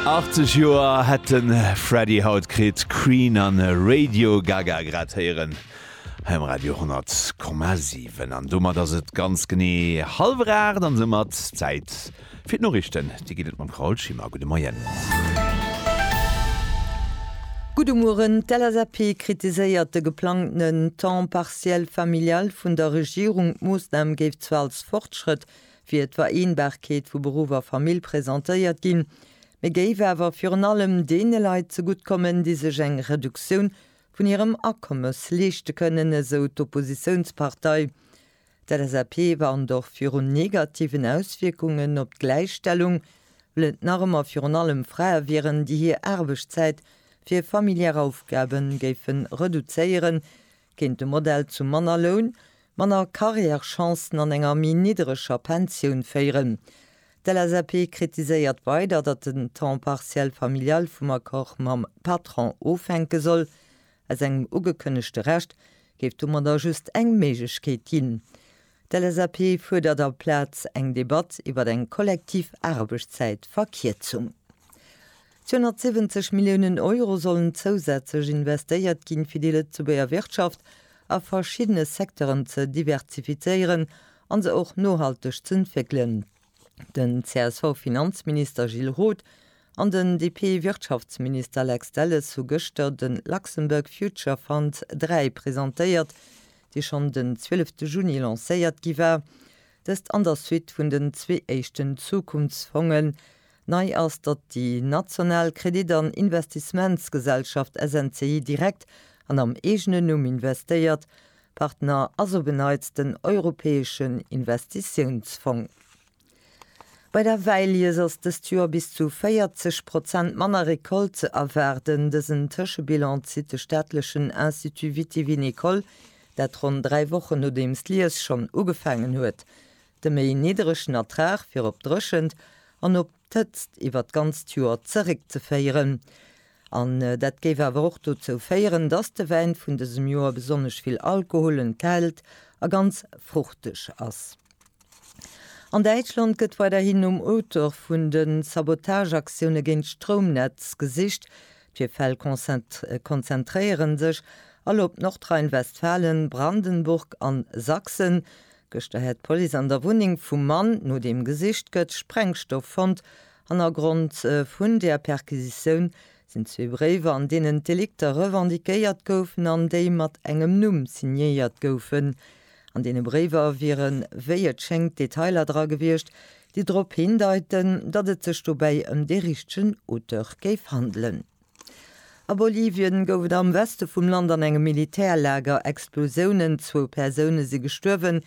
80 Joer hätt de Freddie haut kritt, Queen a Radio Gaga grad héieren hei um Radio 100,7. An domat ass et ganz genee hallwer 8 an soumat Zäit fir d'Noriichten. Déi ginn et mam Carole Schimmer. Gudde Moien. Gudde Mueren. D'LSAP kritiséiert de geplangtenen Temps partiel familial vun der Regierung. D'Moossnam géif zwar als Fortschrëtt wier d'Vereenbarkeet vu Beruff a Famill presentéiert ginn, mee géif awer virun allem deene Leit zegutt kommen, déi sech eng Reduktioun vun hirem Akommes leeschte kënnen, esou d'Oppositiounspartei. D'LSAP warnt och virun negativen Auswierkungen op d'Gläichstellung, well et nach ëmmer virun allem Frae wieren, déi hir Aarbechtszäit fir familiär Aufgabe géife reduzéieren, Kéint de Modell zu manner Loun, manner Carrièrechancen an enger méi niddereger Pensioun féieren? D'LSAP kritiséiert weider, datt den Temps partiel familial vum Accord mam Patron ofhänke soll. Aus engem ugekënnegte Recht géif domadder just eng Méiglechkeet ginn. D'LSAP fuerdert aplaz eng Debatt iwwer eng kollektiv Aarbechtszäitverkierzung. 270 Milliounen Euro sollen zousätzlech investéiert ginn, fir déi Lëtzebuerger Wirtschaft a verschiddene Secteuren ze diversifizéieren an se och nohalteg z'entwéckelen. Den CSV-Finanzminister Gilles Roth an den DP-Wirtschaftsminister Lex Delles hu gëschter de Luxembourg Future Fund 3 presentéiert, dee schonn den 12 de Juni lancéiert gi war. Dëst an der Suite vun den zwee éischten Zukunftsfongen. Nei ass, datt déi national Kredit an Investissementsgesellschaft SNCI direkt an am eegenen Numm investéiert. Partner ass op en Neits den Europäeschen Investitiounsfong. Bei der Wäilies ass dëst Joer bis zu 40 Prozent manner Recolte ze erwaarden. Dësen Tëschebilan zitt de staatlechen Institut vitivinicole, dat ronn dräi Wochen nodeems d'Lies schonn ugefaangen huet, de méi nidderegen Ertrag fir op d'Dréchent an op. d'Hëtzt iwwert d'ganzt Joer zeréckzeféieren. An dat géif awer och dozou féieren, dass de Wäin vun dësem Joer besonnesch vill Alkohol enthält a ganz fruchteg ass. An Däitschland gëtt weiderhin nom Auteur vun de Sabotageaktioune géint d'Stroumnetz gesicht. D'Virfäll konzentréiere sech all op Nordrhein-Westfalen, Brandenburg an Sachsen. Gëschter hätt d'Police an der Wunneng vum Mann, no deem gesicht gëtt, Sprengstoff fonnt. Hannergrond vun där Perquisitioun sinn zwee Bréiwer, an deenen d'Delikter revendiquéiert goufen an déi mat engem Numm signéiert goufen. An deene Bréiwer wiere wéi et schéngt Detailer dra gewiescht, déi drop hindeiten, datt et sech dobäi ëm dee richtegen Auteur géif handelen. A Bolivien gouf et am Weste vum Land an engem Militärlager Explosiounen. Zwou Persoune si gestuerwen,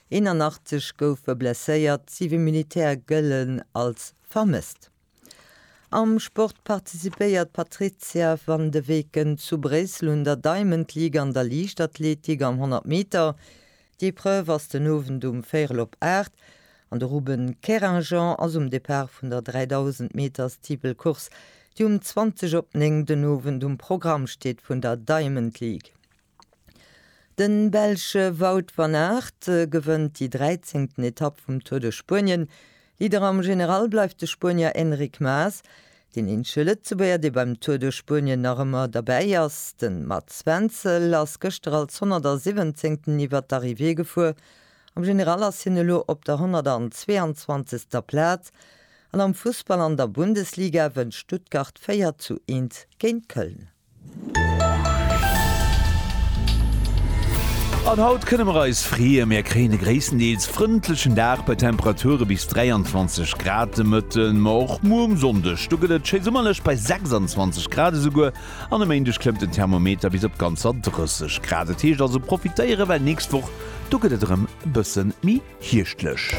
81 goufe blesséiert, siwe Militär gëllen als vermësst. Am Sport participéiert d'Patrizia van de Weken zu Bréissel un der Diamond League an der Liichtathletik am 100 Meter. D'Epreuve ass den Owend um véirel op 8 an de Ruben Kerinjan ass um Depart vun der 3000 Meter Steeple-Course, déi um 20 op 9 den Owend um Programm steet, vun der Diamond League. De Belsche Wout van Aert gewënnt déi 13. Etapp vum Tour de Spuenien, Leader am General bleift de Spuenier Enric Mas. Deen eenzege Lëtzebuerger, dee beim Tour de Spuenien nach ëmmer derbäi ass, de Mats Wenzel, ass gëschter als 117. iwwert d'Arrivée gefuer. Am General ass hien elo op der 122. Plaz. An am Fussball an der Bundesliga wënnt Stuttgart 4 zu 1 géint Köln. An haut kënne mer eis freeë, mir kréien e gréisstendeels frëndlechen Dag bei Temperature bis 23 Grad de Mëtten. Ma och muer um Sonndeg, do gëtt et schéi summerlech bei 26 Grad esouguer. An e Méindeg klëmmt den Thermometer bis op ganzer 30 Grad. Et heescht also profitéieren, well nächst Woch, do gëtt et erëm e bësse méi Hierschtlech.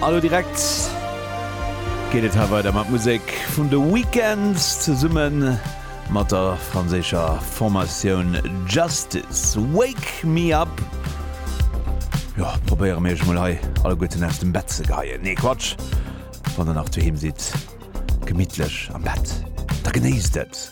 An elo direkt geet et hei weider mat Musek vun The Weeknd zesumme mat der franséischer Formatioun Justice. Wake me up. Jo, probéiere mir iech mol hei alleguerten aus dem Bett ze geheien. Nee, Quatsch, wann der nach doheem sidd, gemittlech am Bett, da genéisst et.